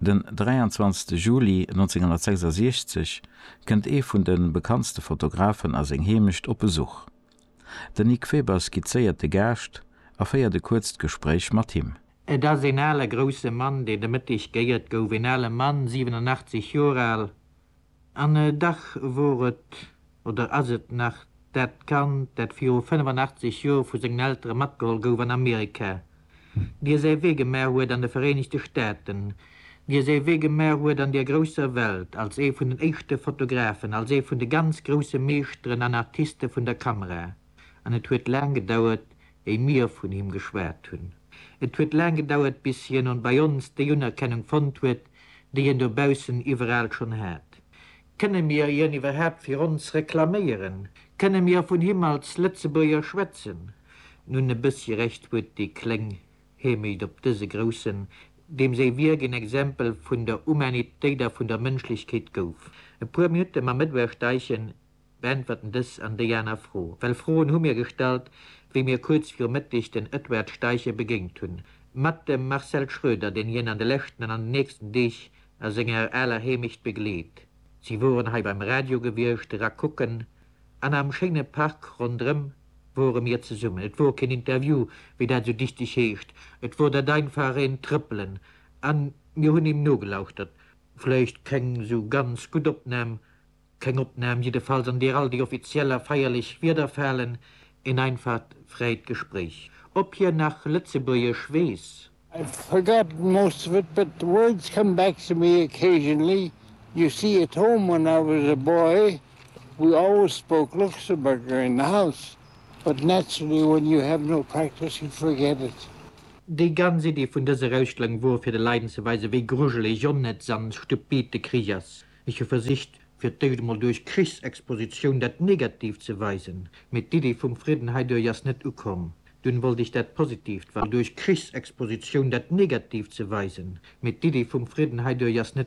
Den 23 Juli 1966 kënnt ee vun de bekanntste Fotografen a seng Heemecht op Besuch. Den Nic Weber skizzéiert de Gaascht a féiert e kuerzt Gespréich mat him. Et ass een ale grousse Mann, deen de Mëtteg geéiert gouf. Een ale Mann, 87 Joer al. An dach wor et, oder ass et nach, dat Kand, dat viru 85 Jor vu sengen Eltere matgeholl gouf an Amerika, dir säi Wee gemaach huet an de Vereenegte Staaten, dir säi Wee gemaach huet an der grousser Welt, als ee vun den éischte Fotografen, als ee vun de ganz grousse Meeschteren an Artiste vun der Kamera. an et huet laang gedauert, éi mir vun him geschwat hunn. Et huet laang gedauert, bis hien on bei ons déi Unerkennung fonnt huet, déi hien dobaussen iwweraal schonn hat. Kënne mir hien iwwerhaapt fir ons reklaméieren? Kënne mir vun him als Lëtzebuerger schwätzen? Nun, e bëssi Recht huet dee kleng Hemeyd op dëse Groussen, deem säi Wierk een Exempel vun der Humanitéit a vun der Mënschlechkeet gouf. E puer Minutte mam Edouard Steichen, Beäntwerten dës an déi aner Fro. Well Froen hu mir gestallt, wéi mir kuerz viru Mëtteg den Edward Steichen begéingt hunn. Mat dem Marcel Schröder, deen hien an de leschten an an den nächsten Deeg a senger aler Heemecht begleet. Si woren hei beim Radio gewiescht, era kucken, an am schéine Park ronderëm wore mir zesummen. Et wor keen Interview, wéi dat esou dichteg heescht, et wor dat einfach een Trëppelen a mir hunn him nogelauschtert. Vläicht keng esou ganz gutt Opnam, Keng Opnahm jiddefalls an deer all déi offiziell a feierlech Wieder falen, een einfaht fräit Gespréich. Op hien nach Lëtzebuergesch weess? I forgot most of it, but words come back to me occasionally. You see, at home when I was a boy we always spoke Luxemburger in the house, but naturally when you have no practice you forget it. Déi ganz Iddi vun dëser Ausstellung wor fir de Leiden ze weisen, wéi grujelesch, onnëtz an stupid de Krich ass. Ech hu versicht, fir d'éischt emol duerch Krichsexpositioun dat Negatiivt ze weisen, mee d'Iddi vum Fridden heiduerch ass net ukomm. Dunn wollt ech dat Positiivt, wa. Duerch Krichsexpositioun dat Negatiivt ze weisen, mee d'Iddi vum Fridden heiduerch ass net.